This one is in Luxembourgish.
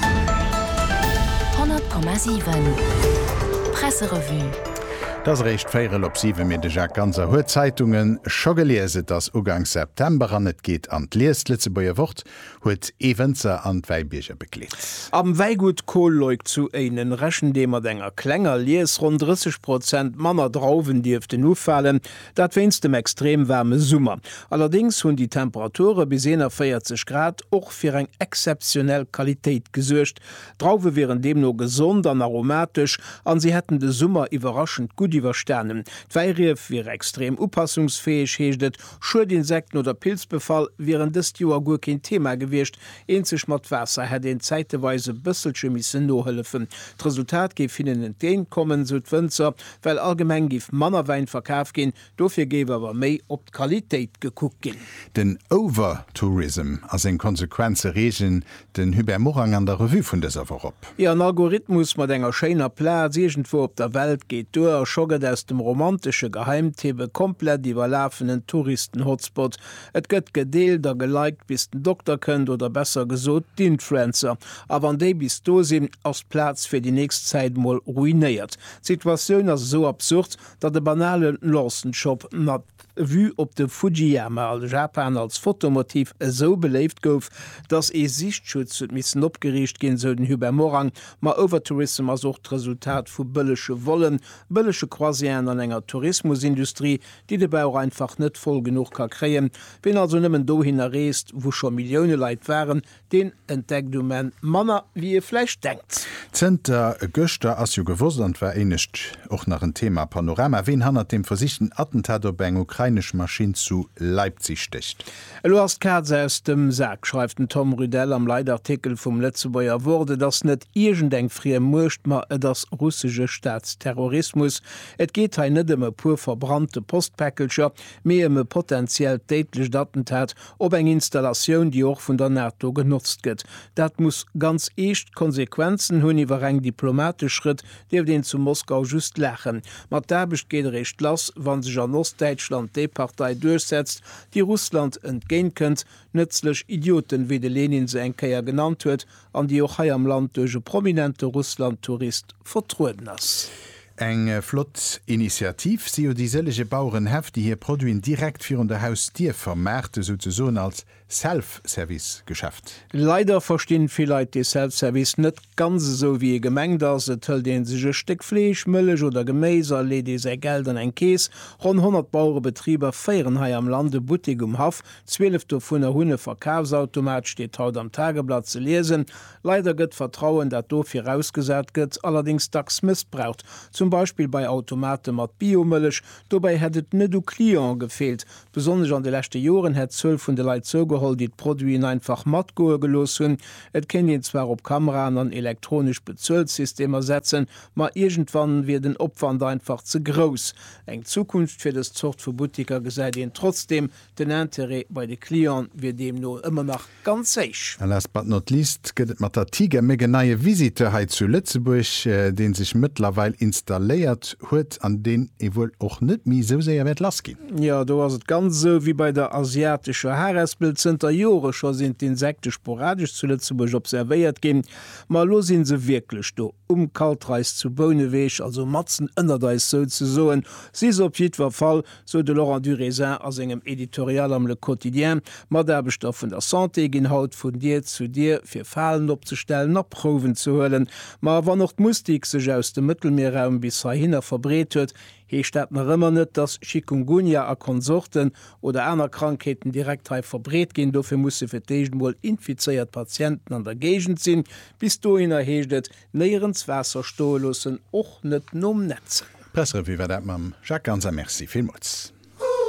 100,7 Presserevue. Et ass eréischt véierel op siwe, mee de Jacques Ganser huet d'Zeitunge scho gelies. Et ass Uganks September an et geet an d'Lies. D'Lëtzebuerger Wort huet ee Wënzer an d'Wäibierger begleet. Am Wäigut Koolleuk zu Éinen rechent ee mat enger klenger Lies. Ronn 30 Prozent manner Drauwen dierften ufalen. Dat wéinst dem extrem waarme Summer. Allerdéngs hunn déi Temperature bis 41 Grad och fir eng exzeptionell Qualitéit gesuergt. D'Drauwe wieren deemno gesond an aromatesch a si hätten de Summer iwwerraschend gutt iwwerstanen. D'Wäirief wiere extrem upassungsfäeg, heescht et. Schuedinsekten oder Pilzbefall wieren dëst Joer guer keen Thema gewiescht. Eenzeg mat Waasser hätt een zäiteweis e bësselche missen nohëllefen. D'Resultat géif hinnen entgéint kommen, sou d'Wënzer. well allgemeng giff manner Wäin verkaf ginn, dofir géif awer méi op d'Qualitéit gekuckt ginn. Den Overtourism a seng Konsequenze reegen den Hubert Morang an der Revue vun dëser Woch op. Jo, en Algorithmus mat enger schéiner Plaz iergendwou op der Welt geet duer a scho gëtt aus dem romantesche Geheimtipp e komplett iwwerlafenen Touristen-Hotspot. Et gëtt gedeelt a geliked bis den Dokter kënnt, oder besser gesot d'Influencer. A wann déi bis do sinn, ass d'Plaz fir déi nächst Zäit mol ruinéiert. D'Situatioun ass esou absurd, datt e banale Lawson Shop mat Vue op de Fujiyama a Japan als Fotomotiv esou beléift gouf, datt ee Sichtschutz huet missen opgeriicht ginn, esou den Hubert Morang. Ma Overtourism ass och d'Resultat vu bëllege Vollen, bëllege Croisièren an enger Tourismusindustrie, déi de Bauch einfach net voll genuch ka kréien. Ween also nëmmen dohinner reest, wou scho Millioune Leit waren, Deen entdeckt um Enn manner wéi ee vläicht denkt. Zënter gëschter ass jo gewosst, an et war éinescht och nach en Thema a Panorama, ween hannert dem versichten Attentat op eng ukrainesch Maschinn zu Leipzig stécht. Elo ass d'Kaz aus dem Sak, schreift den Tom Rydell am Leitartikel vum Lëtzebuerger Wort. Et ass net iergend eng friem Muecht, ma et ass russesche Staatsterrorismus. Et geet hei net ëm e puer verbrannte Postpäckelcher, mee ëm e potenziellt déidlecht Attentat op eng Installatioun, déi och vun der NATO genotzt gëtt. Dat muss ganz eescht Konsequenzen hunn. Iwwer reng diplomatesch Schrëtt dierft een zu Moskau just laachen. Ma d'Aarbecht geet eréischt lass, wa sech an Ostdäitschland déi Partei duerchsetzt, déi Russland entgéint kënnt, nëtzlech Idioten, wéi de Lenin se eng Kéier genannt huet, an déi och hei am Land duerch e prominente Russland-Tourist vertrueden ass. Eng flott Initiativ si jo déi sëllege Bauerenhäff, déi hir Produiten direkt virun der Hausdier vermaarten, souzesoen als Self-Service-Geschäft. Leider verstinn vill Leit dee Self-Service net ganz esou, wéi e gemengt ass. Et hëlt ee sech e Stéck Fleesch, Mëllech oder Geméis a leet ee säi Geld an eng Kees. Ronn 100 Bauerebetriber féieren hei am Land e Buttek um Haff. Zwielef dovunner hunn e Verkafsautomat, steet haut am Tageblatt ze liesen. Leider gëtt d'Vertrauen, dat do virausgesat gëtt, allerdéngs dacks mëssbraucht, zum Beispill bei Automate mat Biomëllech. Dobäi hätt et net u Clientë gefeelt. Besonnesch an de leschte Joren hätt d'Zuel vun de Leit zougeholl, déi d'Produiten einfach matgoe gelooss hunn. Et kéint een zwar op Kameraen an elektronesch Bezuelsystemer setzen, ma iergendwann wier den Opwand einfach ze grouss. Eng Zukunft fir dës Zort vu Buttiker gesäit een trotzdeem Den Interêt bei de Cliente wier deemno ëmmer nach ganz héich. A last but not least gëtt et mat der Tigermück en neie Visiteur hei zu Lëtzebuerg, dee sech mëttlerweil installéiert huet an deen ee wuel och net méi esou séier wäert lass ginn. Jo, do ass et ganz esou wéi bei der asiatescher Harespel, Zënter Jore scho sinn d'Insekte sporadesch zu Lëtzebuerg observéiert ginn, ma elo si se wierklech do. Um Kaltreis zu Bouneweg, also matzen ënnert eis souzesoen, si se op jiddwer Fall. sou de Laurent Durézin a sengem Editorial am Le Quotidien. Mataarbechter vun der Santé ginn haut vun Dier zu Dier, fir Falen opzestellen a Prouwen ze huelen. Ma wann och d'Mustik sech aus dem Mëttelmierraum bis heihinner verbreet huet, heescht dat nach ëmmer net, dass Chikungunya a Konsorten oder aner Krankheeten direkt hei verbreet ginn. Dofir musse fir d'éischt emol infizéiert Patienten an der Géigend sinn. Bis dohinner heescht et, Léieren d'Waasser stoe loossen, och net nom Nätzen. Pressrevue war dat mam Jacques Ganz a Merci villmools.